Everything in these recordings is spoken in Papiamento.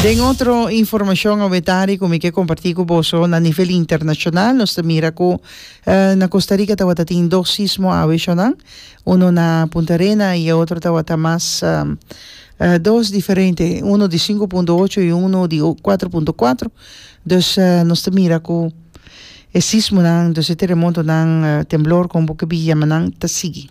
Den otro informacion awetari cu mi ke comparti cu boso na nivel internacional nos ta mira cu uh na Costa Rica tawata tin dos sismo awe eshonan uno na Punta Arena y e otro tawata mas uh dos diferente uno di sinku punto ocho y uno di cuatro punto cuatro dus nos ta mira cu e sismonan dus e teremotonan uh temblor como bo ke biyanan ta sigui.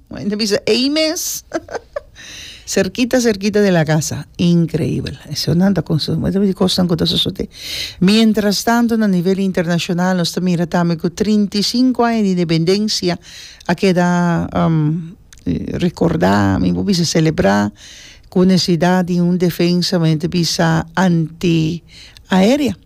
Moe ta bisa ei mes. cerquita cerquita de la casa. Increíble. Eso nan ta consu. Moe ta bisa cosnan cu ta sosode. Mientras tanto na nivel internacional nos ta mira tambe cu trinta i sinku aña di independencia a keda um recorda, mi por bisa celebra cu necesidad di un defensa men ta bisa anti aerea.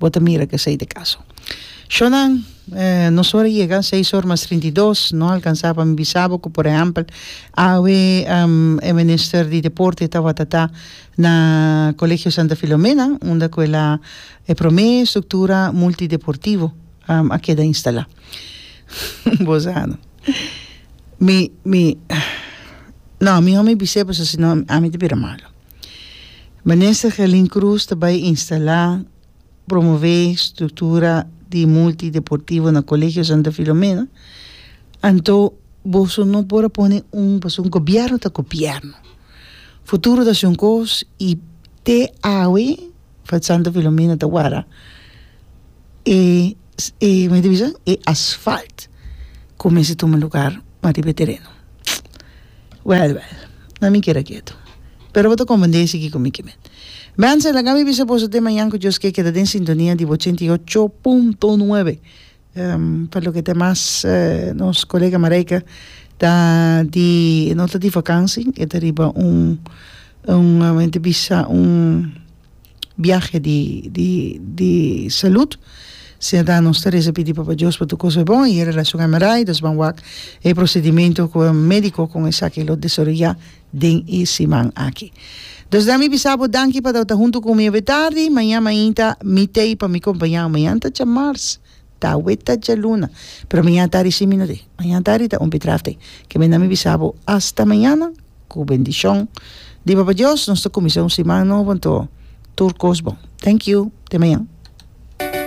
Bo ta mira cu esey ta e caso. Shonan, Nos ora yega seis or mas trinta i dos, no alcansa pa mi bisa bo cu por ehempel awe e Minister di Deporte tawata ta na Colegio Santa Filomena unda cu el a e prome structura multideportivo a keda instala. Bo sa no. Mi, mi, no, mi no mi bisa bo sa si no ami ta bira malo. Minister Gelin Cruz ta bai instalá, promové struktura di multi deportivo na Colegio Santa Filomena, anto boso no por a pone un pasobra gobièrnu ta gobièrnu. Futuro ta asina un kos i te awe Santa Filomena ta wara e e asfalt cuminsa tuma lugar pa riba e tereno well well na mi keda ketu pero bo ta comprende y sigui cu mi kimen Wenzel laga mi bisa boso den mañan cu Dios ke keda den sintonia di ochenta y ocho punto nuebe pa loke ta mas nos colega Marijke ta di no ta di vakantie e ta riba un un biahe di di di salud serda nos ta reza pidi papa dios pa tur cosa e bon y e relacion hemorroides ban wak e procedimento cu e medico con esaki lo desaroya den e siman aki dus dami bisa bo danki pa ta hunto cu mi awe tardi maña mainta mi tey pa mi compañao mañanta cha mars. Ta weta djaluna, pero mañana tardi si mi no tin. Mañana tardi ta un pitrafte ke men a mi bisa bo hasta mañana ku bendishon di Papa Dios nos ta kuminsá un siman nobo anto tur kos bon. Thank you! Te mañan.